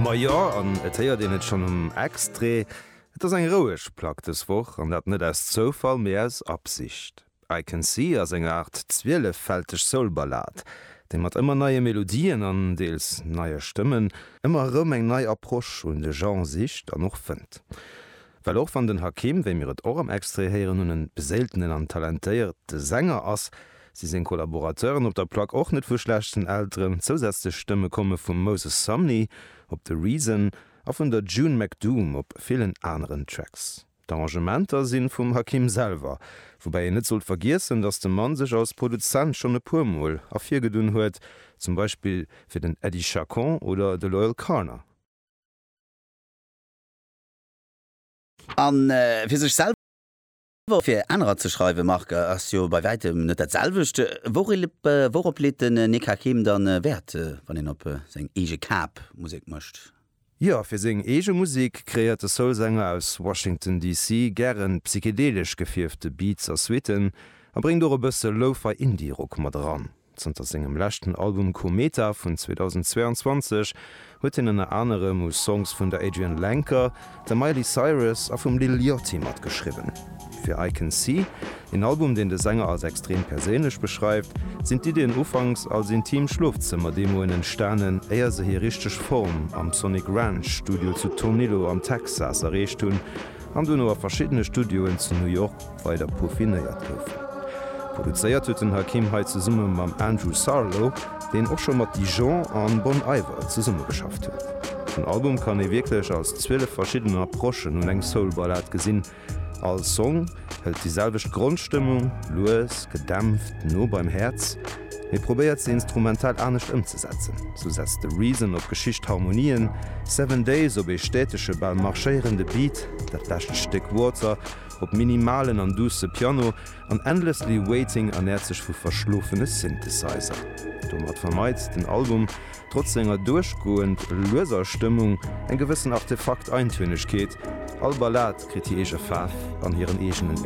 Ma jo, an et héiert een et schonn um Extrait, et ass eng roueg Plack dës Woch, an dat net aus Zoufall, mee aus Absicht. I Can See ass eng Aart zwieleffälteg Soul-Ballad, déi mat ëmmer neie Melodien an deels neie Stëmmen ëmmer erëm eng nei Approche un de Genre sicht an och fënnt. Well och wann den Hakim, wéi mir et och am Extrait héieren hunn, e beséiltenen an talentéierte Sänger ass, Si seng Collaborateuren op der Plack och net vu schlechten Elteren. Zousätzlech Stëmme komme vum Moses Sumney op The Reason a vun der June McDoom op villen aneren Tracks. D'Arrangementer si vum Hakim selwer, woubäi een net sollt vergiessen, datt de Mann sech als Produzent schonn e puer Mol ervirgedunn huet, zum Beispill fir den Eddie Chacon oder de Loyle Carner. A fir sech selwer. Awer fir anerer ze schreiwen, Marc, ass jo bei wäitem net dat selwecht. Wourop leet den Nick Hakim dann Wäert, wann een op seng eege Kap Musek mécht? Jo, fir seng eege Musek kreéiert de Soul-Sänger aus Washington DC. gären psychedelesch gefierfte Beats a Suiten a bréngt och e bësse Lo-Fi Indie-Rock mat eran. Zënter sengem leschten Album Kometa vun 2022 huet hien ënner anerem u Songs vun der Adrianne Lenker, der Miley Cyrus a vum Lil Yachty matgeschriwwen. Fir I Can See, een Album, deen de Sänger als extrem perséinlech beschreift, sinn d'Iddien ufanks als intim Schlofzëmmer-Demoen entstanen, éier se hir richteg Form am Sonic Ranch Studio zu Tornillo am Texas erreecht hunn an dono a verschiddene Studioen zu New York, weider peaufinéiert goufen. Produzéiert huet den Hakim hei zesumme mam Andrew Sarlo, deen och scho mat Dijon an Bon Iver zesummegeschafft huet. Den Album kann ee wierklech als 12 verschidden Approchen un eng Soul-Ballad gesinn. All Song hëlt déi selwecht Grondstëmmung, lues, gedämpft, no beim Häerz, mee probéiert se instrumental anescht ëmzesetzen. Sou setzt The Reason op geschicht Harmonien, Seven Days op ee stätege, bal marschéierende Beat, dat lescht Stéck Water, op minimalen an duusse Piano an Endlessly Waiting ernäert sech vu verschlofene Synthesizer. Domat vermeit den Album, trotz senger duerchgoend lueser Stëmmung, eng gewëssen Artefakt-Eintönnegkeet, all Ballad kritt hir eege Faarf an hiren eegenen Univers.